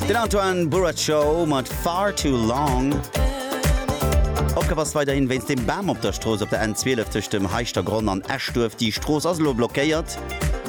Den Antoine Burraco mat Far Too Long. Opgab ass weiderhin wéinst dem Bam op der Strooss op der N12 tëscht dem Heischtergronn an Eschduerf. Déi Strooss ass elo blockéiert.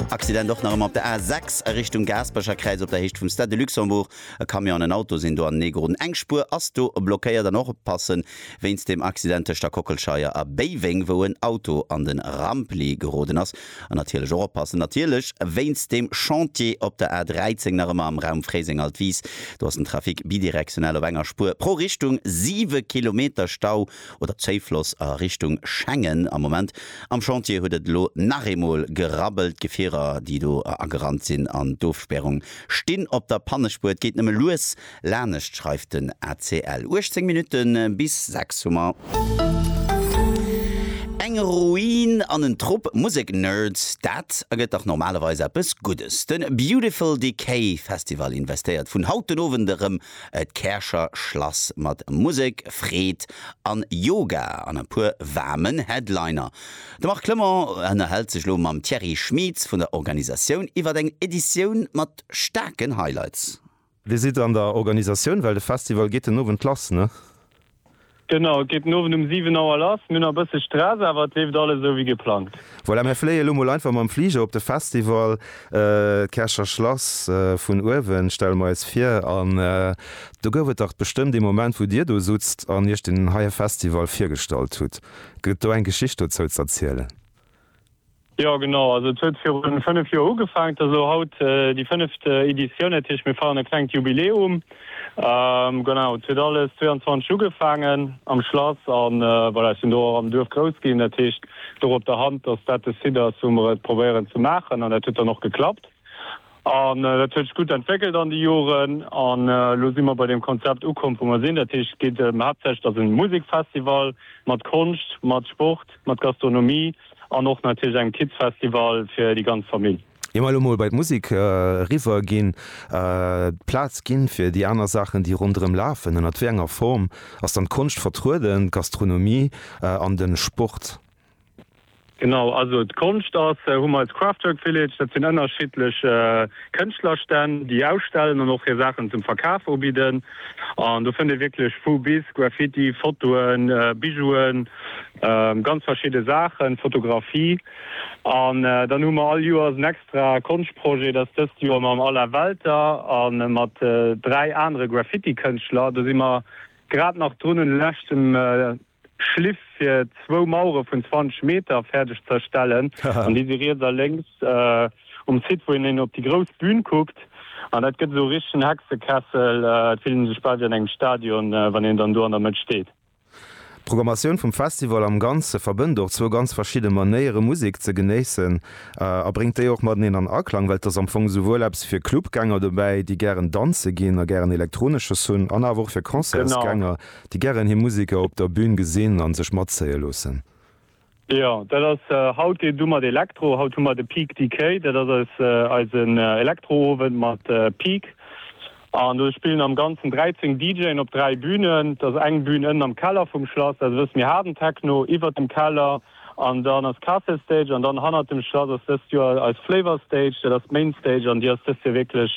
Accident och nach ëmmer op der A6 a Richtung Gaaspercherkräiz op der Héicht vum Stade de Luxembourg. E Camion an en Auto sinn do anenee geroden. Eng Spuer ass do blockéiert. An och oppassen wéinst dem Accident tëscht der Kockelscheier a Béiweng, wou en Auto an de Rampli geroden ass. An natierlech och oppassen, natierlech wéinst dem Chantier op der A13 nach ëmmer am Raum Fréiseng-Altwis. Do ass den Trafic bidirektionell op enger Spuer pro Richtung. Siwe Kilometer Stau oder Zoufloss a Richtung Schengen. Am Moment am Chantier huet et elo nach eemol gerabbelt. Gefierer, déi do agerannt sinn an d'Ofspärung stinn op der Pannespuer. Et geet nëmme lues Lanescht schreift den ACL. 18 Minutte bis 6 hu mer. Eng Ruin an en Trupp Musek-Nerds, dat ergëtt dach normalerweis eppes Guddes. De Beautiful Decay Festival investéiert vun haut den Owend erëm d'Käercher Schlass mat Musek, Freed a Yoga an e puer waarmen Headliner. De Marc Clement ënnerhält sech elo mam Thierry Schmieds vun der Organisatioun iwwer eng Editioun mat staarken Highlights. Wéi sidd der an der Organisatioun? Well de Festival geet den Owend lass, ne? Genau, et geet den Owend um 7 Auer lass. Mir hunn nach e bësse Stress, awer et leeft alles esou wéi geplangt. Voilà, mir fléie lo mol einfach mam Fliger op de Festival. D'Käercher Schlass vun uewen stelle mer eis vir. An do gouf et dach bestëmmt ee Moment, wou dir do sutzt an iech deen heie Festival virgestallt hutt. Gëtt et do eng Geschicht dozou z'erzielen? Jo genau, also et huet virun 5 Joer ugefaang, et ass elo haut déi fënneft Editioun, dat heescht mir feieren e klengt Jubiläum. Genau, et huet alles 22 ugefaangen am Schlass a voilà, ech sinn do och am Duerf grouss ginn, dat heescht et louch op der Hand, dass dat de Site ass wou mer et probéieren ze maachen an dat huet dann och geklappt. An dat huet sech gutt entwéckelt an de Joren. An elo si mer bei deem Konzept ukomm, wou mer sinn. Dat heescht, et geet ëm haaptsächlech, dass e Musekfestival mat Konscht, mat Sport, mat Gastronomie an och natierlech engem Kidsfestival fir déi ganz Famill. Ier mer elo mol bei d'Musek eriwwer ginn, d'Plaz ginn, fir déi aner Saachen, déi ronderëm lafen, ënnert wéi enger Form ass dann d'Konscht vertrueden, d'Gastronomie an de Sport? Genau, also d'Konscht ass, hu mer als Kraftwerk Village, dat sinn ënnerschiddlech Kënschtlerstänn, déi ausstellen an och hir Saachen zum Verkaf ubidden. An do fënnt ee wierklech vu bis, Graffiti, Fotoen, Bijouen, ganz verschidde Saachen, Fotografie. An dann hu mer all Joers en extra Konschtprojet, dat ass dëst Joer mam Alain Welter a mat dräi anere Graffitikënschtler. Do si mer grad nach drun un de leschten Schliff fir zwou Mauere vun 20 Meter fäerdeg ze erstellen. An déi si riets a lénks um Site, wou een op déi grouss Bühn kuckt. An dat gëtt esou e richtegen Hexekessel. Et fillt een sech bal wéi an engem Stadion, wann een dann do an der Mëtt steet. D'Programmatioun vum Festival am Ganze verbënnt och zwou ganz verschidde Manéiere Musek ze genéissen a bréngt déi och mateneen an Aklang, well et ass am Fong esouwuel eppes fir Clubgänger dobäi, déi gären danze ginn a gären Elektronesches hunn, an awer och fir Concertsgänger. Déi gären hir Museker op der Bühn gesinn an sech matzéie loossen. Jo dat ass haut deen du mat Elektro. Haut hu mer de Peak Decay, dat ass eis eisen Elektroowend mat Peak an do spillen am ganzen 13 DJen op 3 Bühnen. Dat ass eng Bühn ënnen am Keller vum Schlass, dat ass e bësse méi haarden Techno, iwwert dem Keller an dann ass Castle Stage an dann hannert dem Schlass ass dëst Joer eis Flavor Stage, dat ass d'Main Stage an déi ass dëst Joer wierklech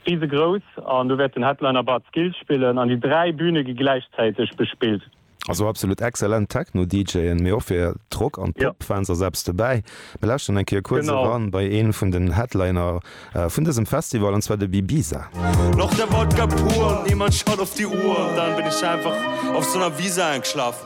Riesegrouss, an do wäert den Headliner Bad Skills spillen, an déi dräi Bühne gi gläichzäiteg bespillt. Also absolut excellent Techno DJen, mee och fir d'Rock an d'Pop Fans ass eppes dobäi. Mir lauschteren eng Kéier kuerz eran bei een vun den Headliner vun dësem Festival, an zwar de Bibisa. Noch der Wodka pur, niemand schaut auf die Uhr, dann bin ich einfach auf so 'ner Wiese eingeschlafen.